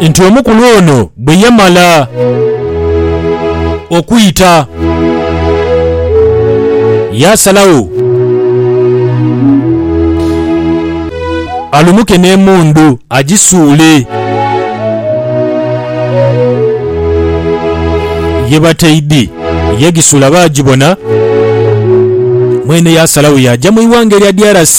nti omukulu ono bwe yamala okwita yaasalagho alumuke n'emundu agisuule ye bataidhi. Yagisuula baagibona, mwene yaasalagho yaaja mu ighanga erya DRC.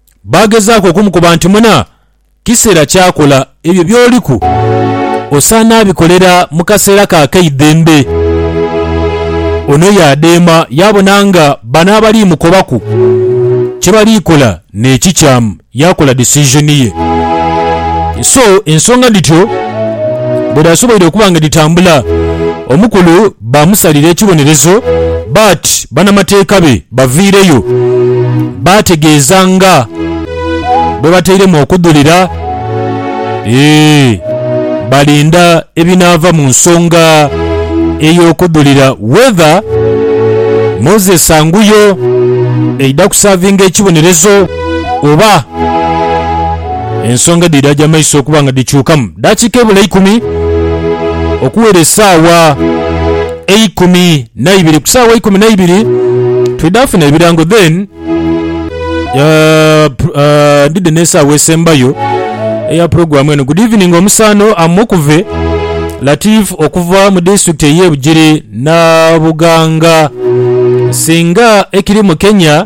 Baagezaaku okumukoba nti, Muna, kiseera kya kola ebyo by'oliku. Osaana abikolera mu kaseera ko ak'eidembe. Ono yaadheema yaabona nga bano abali mukobaku kye bali kola n'ekikyamu, yaakola decision ye. So, ensonga dhityo bwe dhaasoboire okuba nga dhitambula, omukulu baamusalira ekibonerezo, but banamateeka be baviireyo baategeeza nga bwe batairemu okudhulira. Eeh, balinda ebinaava mu nsonga ey'okudhulira whether Moses anguyo eidha kusaavinga ekibonerezo oba. Ensonga edhidha agya maiso okuba nga dhikyukamu dakiika ebula ikumi okuwera esaawa eikumi naibiri. Ku saawa eikumi naibiri twidha funa ebirango then ndidhe n'esaawa esembayo eya pulogulamu eno. Good evening omusaano am Mukuve Latif okuva mu disitulikiti eye Bugiri Nabuganga. Singa ekiri mu Kenya.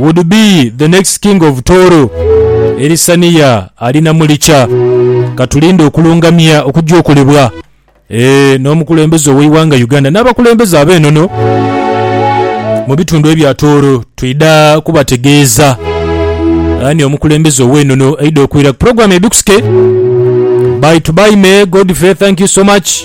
would be the next king of Tooro. Elisaniya ali na Mulicha. Katulinde okulungamya okujja okolebwa eeh n'omukulembeze ow'eighanga Uganda n'abakulembeze ab'enono mu bitundu ebya Tooro. Twidha kubategeeza ani omukulembeze ow'enono aidha okwira ku pulogulaamu Ebikusike. Bye to bye may Godfrey thank you so much.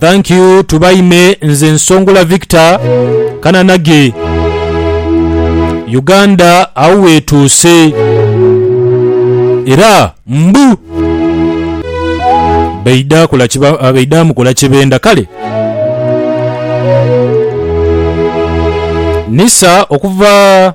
Thank you Tubaime nze Nsongola Victor Kananage Uganda agho wetuuse era mbu baidha kola baidha mukola kyebenda kale Nisa okuva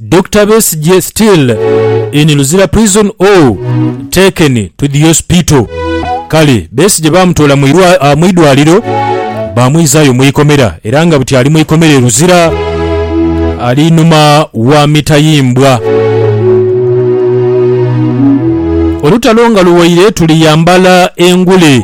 Dokita Besigye still in Luzira prison or taken to the hospital? Kale Besigye baamutoola mu idwaaliro baamwizaayo mu ikomera era nga buti ali mu ikomera e Luzira ali inhuma wa mitayimbwa. Olutalo nga luwaire tuliyambala engule.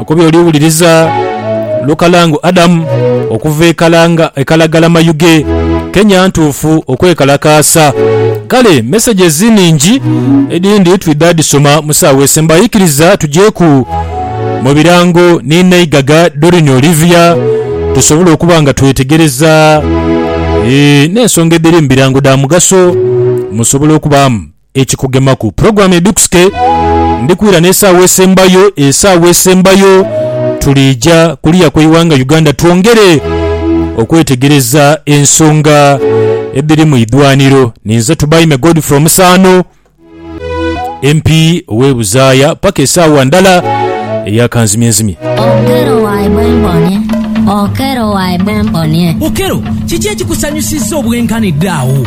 Oku by'oliwuliriza, Lukalango Adam okuva e Kalanga, e Kalagala-Mayuge, Kenya ntuufu okwekalakaasa. Kale messages nhingi, edhindi twidha dhisoma mu saawa esembayo. Ikiriza tujeeku mu birango ni Naigaga Doreen Olivia tusobole okuba nga twetegereza n'ensonga edhiri mu birango dha mugaso musobole okubaamu. Ekikugemaku. Pulogulaamu edhukusike ndhikwira n'esaawa esembayo. Esaawa esembayo tuliija kuliya kw'eighanga Uganda twongere okwetegereza ensonga edhiri mu idhwaniro. Ninze Tubaime Godfrey Omusaano, MP ow'e Buzaaya paka esaawa ndala eya kanzimyenzimye. Okello, kiki ekikusanyusizza obwenkanidde agho?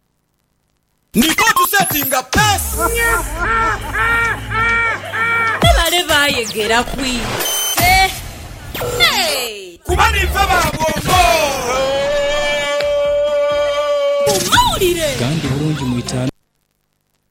Ndidha otusetinga peace. Ni bale baayegera kwidha ise. Kuba niife ba bwongo. Mu mawulire. Gandi bulungi mu itaanu.